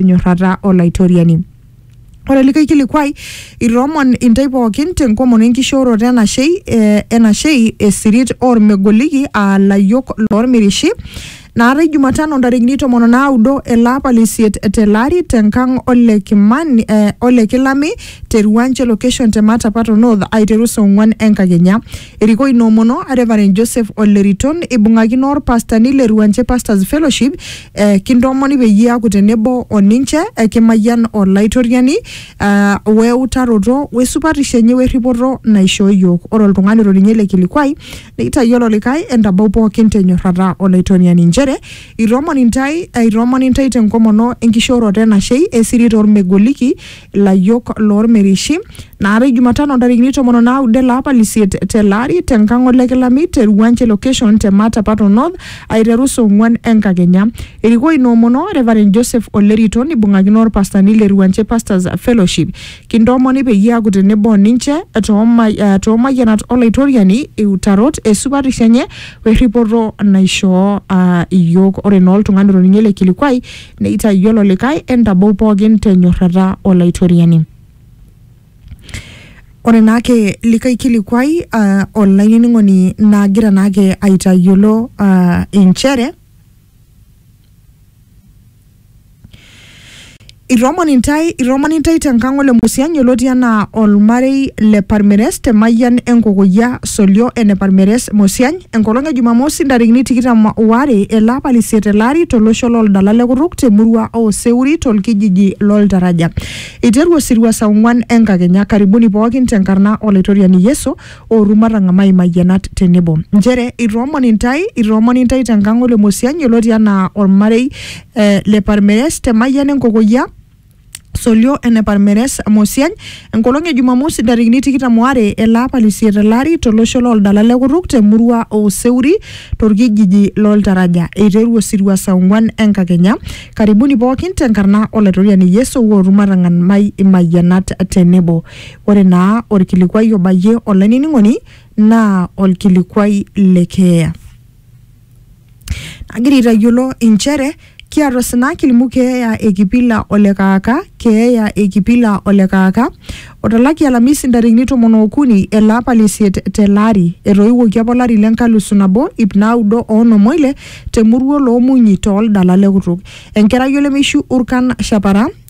enyorrata Olaitoriani. Ore likae kilikuai, itoomon intae pookin tenkomono enkishooroto enashei eh, enashei esirit ormegoliki aa layiok lormirishi naatae Jumatano ntarikini tomon o naudo ele apa le isiet tele ari tenkang ole Kimani eh, ole Kilami te Ruanche location te Matapato North aiteru saa ong'uan enkakenya. Erikoo ina omono Reverend Joseph Ole Riton ibung'akino orpastani le Ruanche Pastors Fellowship eh, kintoomoni peyie iaaku tenebo o ninche eh, kimayian Olaitoriani eh, weutaroto wesupatisho enye werripoto naishoo iyiook ore oltung'ani oto ninye ele kilikuai neitayiolo likae entabau pookin tenyorrata Olaitoriani inchere itoomoni intae eh, itoomoni intae tenkomono enkishooroto enashei esiri tormegoliki Layiok loolmirishi, naatae Jumatano ntarikini tomon o naudo ele apa lisiet tele ari te nkang o Lekilami te Ruwanje location te Matapato North aiteru saa ong'uan enkakenya. Erikoo ina omono Reverend Joseph Olerito neibung'akino olpastani le Ruwanje Pastors Fellowship. Kintoomoni peyie aaku tenebo o ninche too ma- too mayianat o Laitoriani, iutarot, esupatisho enye o erripoto naishoo aa iyiook. Ore naa oltung'ani otoning'o ele kilikuai Neitayiolo likae, Entabou pooki te nyorrata o Laitoriani. Ore naake likae kilikuai uh, olainining'oni nagira naake aitayiolo uh, inchere Itoomon intae, itoomon intae tenkang ole Musianyi oloti anaa olmarei le Parmeres te mayian enkokoyia Solio ene Parmeres Musiany enkolong e Jumamosi ntarikini tikitam oare ele apa le isiet ele ari tolosho looldala le Kuruk temurua oo Seuri tolkijiji loltaraja. Eiteru osirua saa ong'uan enkakenya. Karibuni pookin tenkarna Olaitoriani Yesu ooru matang'amai imayianat tenebo. Nchere itoomoni intae, itoomoni intae tenkang Ole Mosiany yioloti anaa olmarei eh, le Parmeres te Mayian Enkokoyia Solio ene Parmeres Mosiany enkolong e Jumamosi ntarikini tikitam oare ele apa lisiet ele ari tolosho loldala le Kutuk temurua oo Seuri torkijiji loltaraja. Eiteru osirua saa ong'uan enkakenya. Karibuni pookin tenkarna Olaitoriani Yesu ewuootu matang'an mai imayianat tenebo. Ore naa olkilikuai obayie olainining'oni naa olkilikuai le keeya. Agira aitayiolo inchere kiata osina kilimu keeya e Kipila o le Kaaka, keeya e Kipila o le Kaaka. Otalaki Alamisi ntarikini tomon ookuni ele apa le isiet tele ari. Etoiwuoki apa olari le nkalusu nabo ip naaudo o onom oile te murua o Loomunyi too ldala le kutuk. Enkerai olemeishu Urkan Shapara.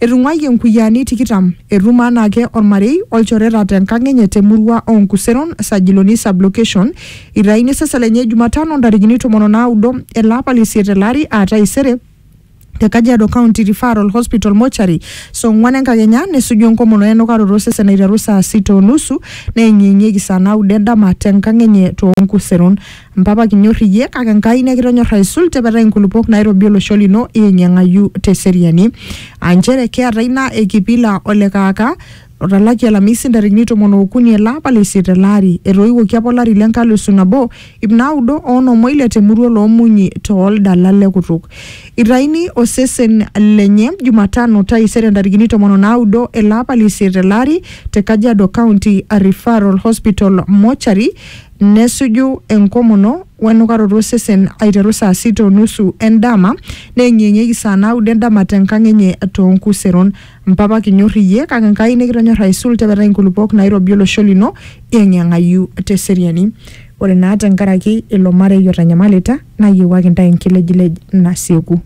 Etung'uayie nkuyiaani tikitam, etum anaake olmarei o lchoreta te nkang enye te murua oo Nkuseron, Sajiloni Sub-location, eitaini osesen lenye Jumatano ntarikini tomon o naudo ele apa le isiet tele ari aa taisere te Kajiado County Referral Hospital Mortuary saa ong'uan enkakenya nesuju enkomono e nukaroto osesen aiteru saa sita o nusu neyeng'iyeng'ieki saa naudo endama te nkang enye too Nkuseron. Mpapa kinyor iyie kake Enkai nekitonyor aisul tepetai nkulupuok nairobi olosho lino ieng'ieng'ayu teseriani. Aa nchere kiata ina e Kipila o le Kaaka otalaki Alamisi ntarikini tomon ookuni ele apa le isiet ele ari. Etoiwuoki apa olari le nkalusu nabo, ip naudo o onom o ile te murua oloo Munyi too ldala le kutuk. Eitaini osesen lenye Jumatano taisere ntarikini tomon o naudo ele apa le isiet ele ari te Kajiado County Referral Hospital Mortuary Nesuju enkomono o enukaroto osesen aiteru saa sita o nusu e ndama neeng'ieng'ieki saa naudo e ndama te nkang enye too nkuseron. Mpapa kinyor iyie kake Enkai nikitonyorra aisul tepetai nkulupuok naairobi olosho lino yeng'iyeng'ayu te seriani. Ore naa te nkaraki ilo marei otanyamalita nayiewuaki intae enkilejilej nasieku.